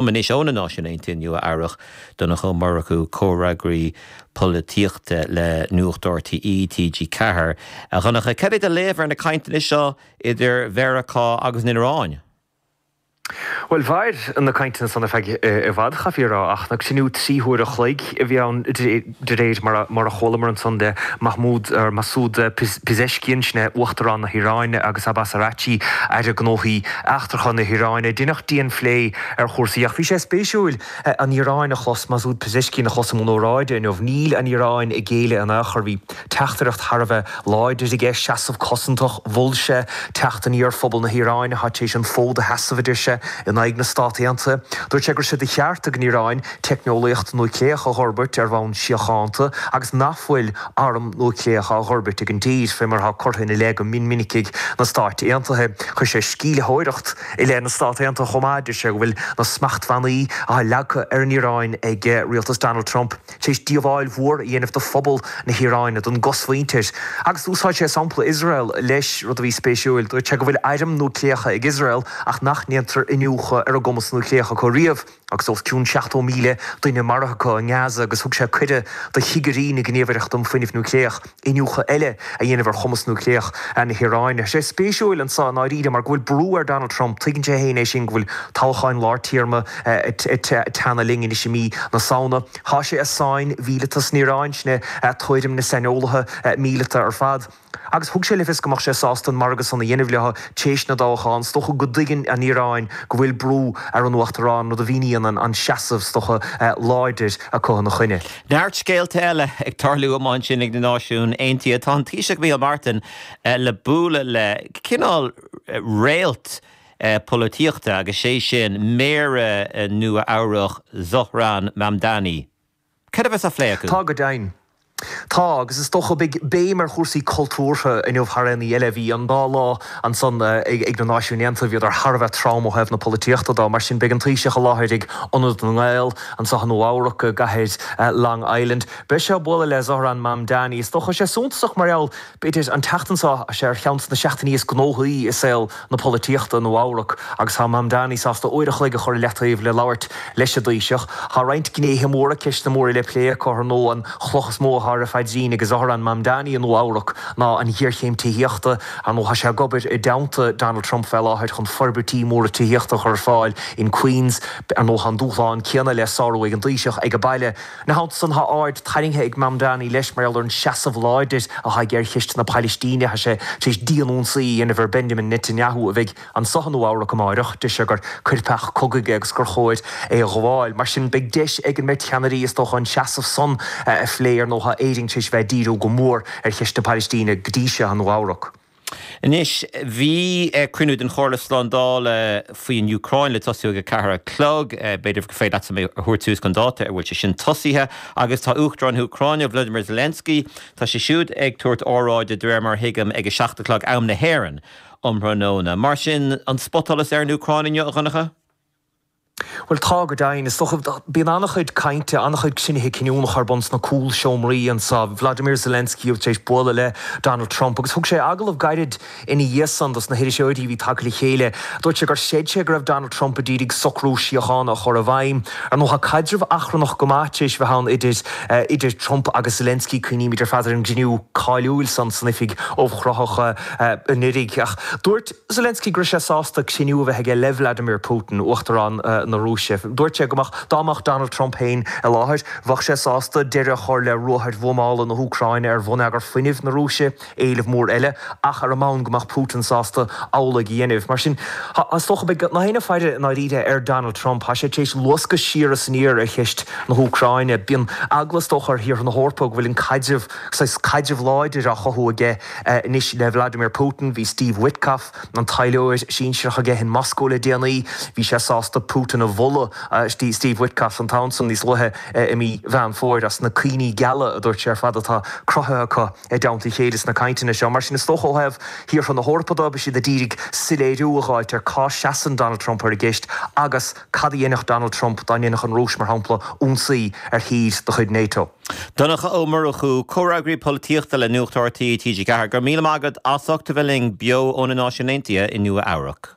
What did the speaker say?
Linn anois ó na Náisiúin Aontaithe i Nua Eabhrac, Donncha Ó Murchú, Comhfhreagraí Polaitíochta le Nuacht RTÉ, TG4. A Dhonncha, cén léamh atá ar na cainteanna seo idir Mheiriceá agus an Iaráin? Bhuel, mhair na cainteanna san ar feadh i bhfad, chaithfí a rá, ach cruinniú trí huaire a chloig a bhí ann. De réir mar a chualamar ansan de, Mahmoud, or Masoud, Pezeshkian, sin é Uachtarán na hIaráine, agus Abbas Araghchi, Aire Gnóthaí Eachtracha na hIaráine. Deineadh dian-phlé ar chúrsaí, ach bhí sé spéisiúil an Iaráin a chlos, Masoud Pezeshkian a chlos i mbun óráide inniu. Níl an Iaráin ag géilleadh in ao' chor. Bhí teachtaireacht thar a bheith láidir aige, seasamh cosantach. Mhol sé teacht aniar phobal na hIaráine, thar éis an fód a sheasamh, a deir sé, in aghaidh na Stát Aontaithe. Dúirt sé go raibh sé de cheart ag an Iaráin, teicneolaíocht núicléach a dh'fhorbairt ar bhonn síochánta agus nach bhfuil arm núicléach á dh'fhorbairt ag an dtír, fé mar atá curtha ina leith go min minic ag na Stáit Aontaithe. Chuir sé sceimhlitheoireacht i leith na Stát Aontaithe chomh maith. Deir sé go bhfuil na smachtbhannaí athá leagtha ar an Iaráin ag rialtas Donald Trump tar éis díobháil mhór a dhéanamh do phobal na hIaráine, don gcosmhuintir. Agus d'úsáid sé sampla Iosrael leis, rud a bhí spéisiúil. Dúirt sé go bhfuil airm núicléacha ag Iosrael ach nach ndéantar iniúchadh ar an gcumas núicléach acu riamh. Agus os cionn 70,000 duine maraithe acu i nGaza agus thug sé cuireadh do chigirí na Gníomhaireachta um Fuinneamh Núicléach iniúchadh eile a dhéanamh ar chumas núicléach na hIaráine. Tá sé spéisiúil ansan i ndáiríre mar go bhfuil brú ar Donald Trump, tuigeann sé féin é sin, go bhfuil toghacháin lár téarma ag teannadh linn anois i mí na Samhna. Tá sé i sáinn mhíleata san Iaráin, sin é tuairim na saineolaithe míleata ar fad. Agus thug sé le fios go mbeadh sé sásta an margadh san a dhéanamh leo tar éis na dtoghachán. Is dócha go dtuigeann an Iaráin go bhfuil brú ar an Uachtarán, rud a mhíníonn an seasamh, is dócha, láidir acu ina choinne. Neart scéalta eile ag tarlú ansin ag na Náisiúin Aontaithe. Tá an Taoiseach Micheál Martin le bualadh le cineál réalt polaitíochta agus sé sin Méara Nua Eabhrac Zohran Mamdani. Céard a bheas á phlé acu? Tá go deimhin. Tá, agus is dócha beidh béim ar chúrsaí cultúrtha inniu thar aon ní eile. Bhí an dá lá ansan ag na Náisiúin Aontaithe, bhíodar thar a bheith trom ó thaobh na polaitíochta de. Mar sin beidh an Taoiseach i láthair ag Ionad na nGael anseo i Nua Eabhrac i gcathair Long Island. Beidh sé ag bualadh le Zohran Mamdani. Is dócha sé suntasach mar gheall. B'fhéidir an tseachtain seo, tá sé ar cheann de na seachtainí is gnóthaí i saol na polaitíochta i Nua Eabhrac agus tá Mamdani sásta uair a chloig a chur i leataobh le labhairt leis an dTaoiseach. Tá roinnt gnéithe móra, ceisteanna móra le plé acu, ar ndóigh an chloch is mó atá ar a phaidrín ag Zohran Mamdani i Nua Eabhrac ná an ghéarchéim tithíochta. Ar ndóigh tá sé ag obair i dteannta Donald Trump fé láthair chun forbairtí móra tithíochta a chur ar fáil in Queens. Ar ndóigh tá an dúshlán céanna le sárú ag an dTaoiseach age baile. Ina theannta san, tá aird tarraingthe ag Mamdani leis mar gheall ar an seasamh láidir atá aige ar Cheist na Pailistíne. Tá sé tar éis dian-ionsaí a dhéanamh ar Benjamin Netanyahu a bheidh anso i Nua-Eabhrac amáireach. Deir sé gur coirpeach cogaidh é agus gur chóir é a ghabháil. Mar sin, beidh deis ag an mbeirt cheannairí is dócha an seasamh san a phlé. Ar ndóigh, tá Éire tar éis bheith ag díriú go mór ar Cheist na Pailistíne go dtí seo i Nua-Eabhrac. Anois, bhí cruinniú den Chomhairle Slándála faoi an Úcráin le tosú ag a ceathair a chlog. B'fhéidir gur féidir leatsa mé a thabhairt suas chun dáta an bhfuil sé sin tosaithe. Agus tá Uachtarán na hÚcráine, Vlodymyr Zelensky, tá sé siúd ag tabhairt óráide, de réir mar a thuigim, ag a seacht a chlog, am na hÉireann, um thráthnóna. Mar sin, an spotsholas ar an Úcráin inniu, a Dhonncha? Bhuel, tá go deimhin. Is dócha, bíonn an-chuid cainte, an-chuid cruinnithe cinniúnacha ar bun sna cúlseomraí anso. Vladimir Zelensky tar éis bualadh le Donald Trump agus thug sé agallamh gairid ina dhiaidh san dos na hiriseoirí a bhí tagtha le chéile. Dúirt sé gur chreid sé go raibh Donald Trump ag iarraidh socrú síochána a chur i bhfeidhm. Ar ndóigh, tá caidreamh achrannach go maith tar éis a bheith ann idir Trump agus Zelensky. Cuimhnímid ar fad ar an gcruinniú cáiliúil san san oifig ubhchruthach anuraidh. Ach dúirt. Zelensky go raibh sé sásta cruinniú a bheith aige le Vladimir Putin, Uachtarán na Rúise. Dúirt sé go mbeadh, dá mbeadh Donald Trump féin i láthair, bheadh sé sásta deireadh a chur le ruathair bhuamála na hÚcráine ar bhonneagar fuinnimh na Rúise, éileamh mór eile, ach ar an mbonn go mbeadh Putin sásta amhlaidh a dhéanamh. Mar sin, is dócha, beimid ag faire i ndáiríre ar Donald Trump. Tá sé tar éis luascadh siar is aniar ar cheist na hÚcráine. Bíonn eagla is dócha ar thíortha na hEorpa go bhfuil an caidreamh, saghas caidrimh láidir á chothú aige. Anois le Vladimir Putin. Bhí Steve Witkoff, an taidhleoir sinsearach aige in Moscó le déanaí. Bhí sé sásta Putin a mholadh, Steve Witkoff an t-am san, níos luaithe i mí Mheán Fómhair, as na cuimhní geala a dúirt sé ar fad atá cruthaithe acu i dteannta a chéile sna cainteanna seo. Mar sin is dócha ó thaobh thíortha na hEorpa de, beidh siad a d'iarraidh soiléiriú a dh'fháilt ar cá seasann Donald Trump ar an gceist agus cad a dhéanfadh Donald Trump dá ndéanfadh an Rúis, mar shampla, ionsaí ar thír de chuid nato. Donncha Ó Murchú, Comhfhreagraí Polaitíochta le Nuacht rte, TG4, go raibh míle maith agat as ucht a bheith linn beo ó na Náisiúin Aontaithe i Nua Eabhrac.